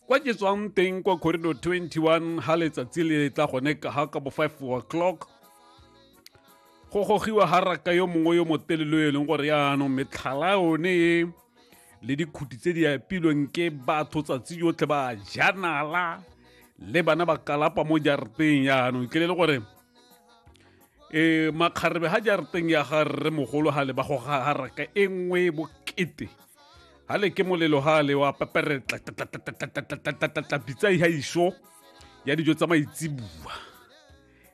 kwa ke tswang teng kwa corridor 21 ha letsatsi le tla gone ka ha ka bo 5 o'clock go gogiwa ha raka yo mongwe yo motelelo e leng gore yaanong metlhala yone e le dikhuti tse di apilweng ke batho tsatsi yotlhe ba janala le bana ba kalapa mo jarateng yaanong ke le le gore e makgarebe ga jarateng ya ga rre mogolo ga le ba go garaka e nngwe bokete ga le ke molelo ga le wa peperetla bitsai ga iso ya dijo tsa maitsibua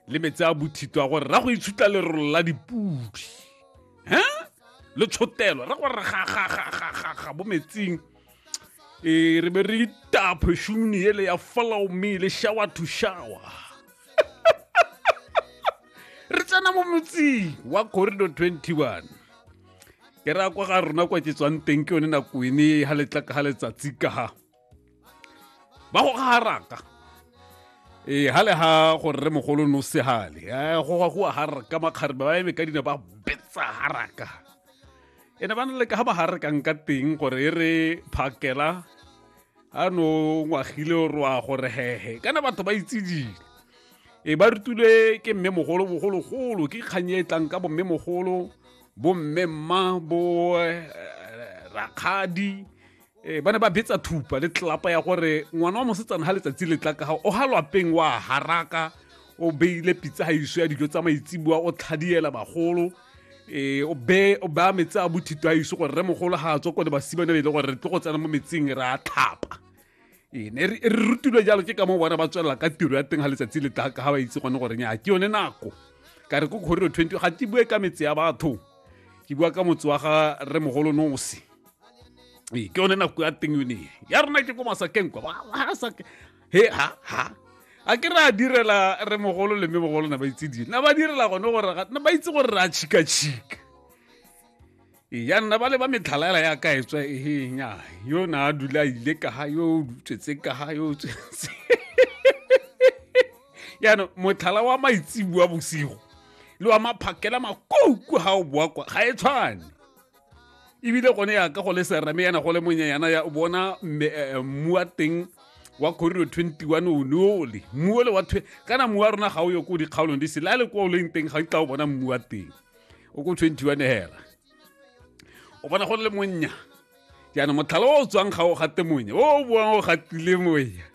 le metse a bothito a gore ra go itshutla lerolo la dipudi he le tshotelo ra gore ga bo metsing e re be re itaphe šumuni ele ya follow me le shower to shower re tsena mo motsing wa corridor 21 ke ra kwa ga rona kwa ke tswang teng ke yone nako ene ga letla ka ga letsatsi ka ga ba go garaka ee ga le ga gore re mogolo no segale go ga go a garaka makgarebe ba eme ka dina ba betsa garaka e ne ba na le ka ba gare kang ka teng gore e re phakela a no ngwagile o roa gore hehe kana batho ba itsedile e ba rutule ke mme mogolo bogologolo ke kganye e tlang ka bomme mogolo bomme mma bo eh, rakgadi ee ba ne ba betsa thupa le tlelapa ya gore ngwana wa mosetsana ga letsatsi le tla ka ga o ga lwapeng wa haraka o beile pitsa ga iso ya dijo tsa maitsibua o tlhadiela bagolo ee o be o baya metsi a bothito a iso gore re mogolo ga a tswa ko le basimane be e le gore re tlo go tsena mo metsing re a tlhapa ee ne re rutilwe jalo ke ka mo bona ba tswelela ka tiro ya teng ga letsatsi le tla ka ga ba itse gone gore nya ke yone nako ka re ko kgoriro twenty ga ke bue ka metse ya batho ke bua ka motse wa ga re mogolo nosi ee ke yone nako ya teng yone ya rona ke ko masakeng kwa he ha ha a ke re a direla re mogolo le mme mogolo na ba itse dile na ba direla gone gore na ba itse gore re a tšhikatšhika ya nna ba le ba metlhalaela ya ka etswa ehenya yo na a dula a ile ka ga yo tswetse ka ga yo tswetse yaanong motlhala wa maitsibua bosigo le wa maphakela makouku ga o boa kwa ga e tshwane ebile gone ya ka go le serame yana go le monyenyana ya bona mmu eh, eh, wa teng wa corridor 21 o ne ole mmu ole wa kana mmu wa rona ga o yo ko dikgaolong di sele a le kwa o leng teng ga o tla o bona mmu wa teng o ko 21 hela o bona go le monnya jaanong motlhala o o tswang ga o gate monya o o boang o gatile moya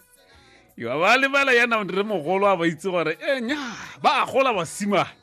yo ba lebala yana re mogolo a ba itse gore e nya ba gola basimane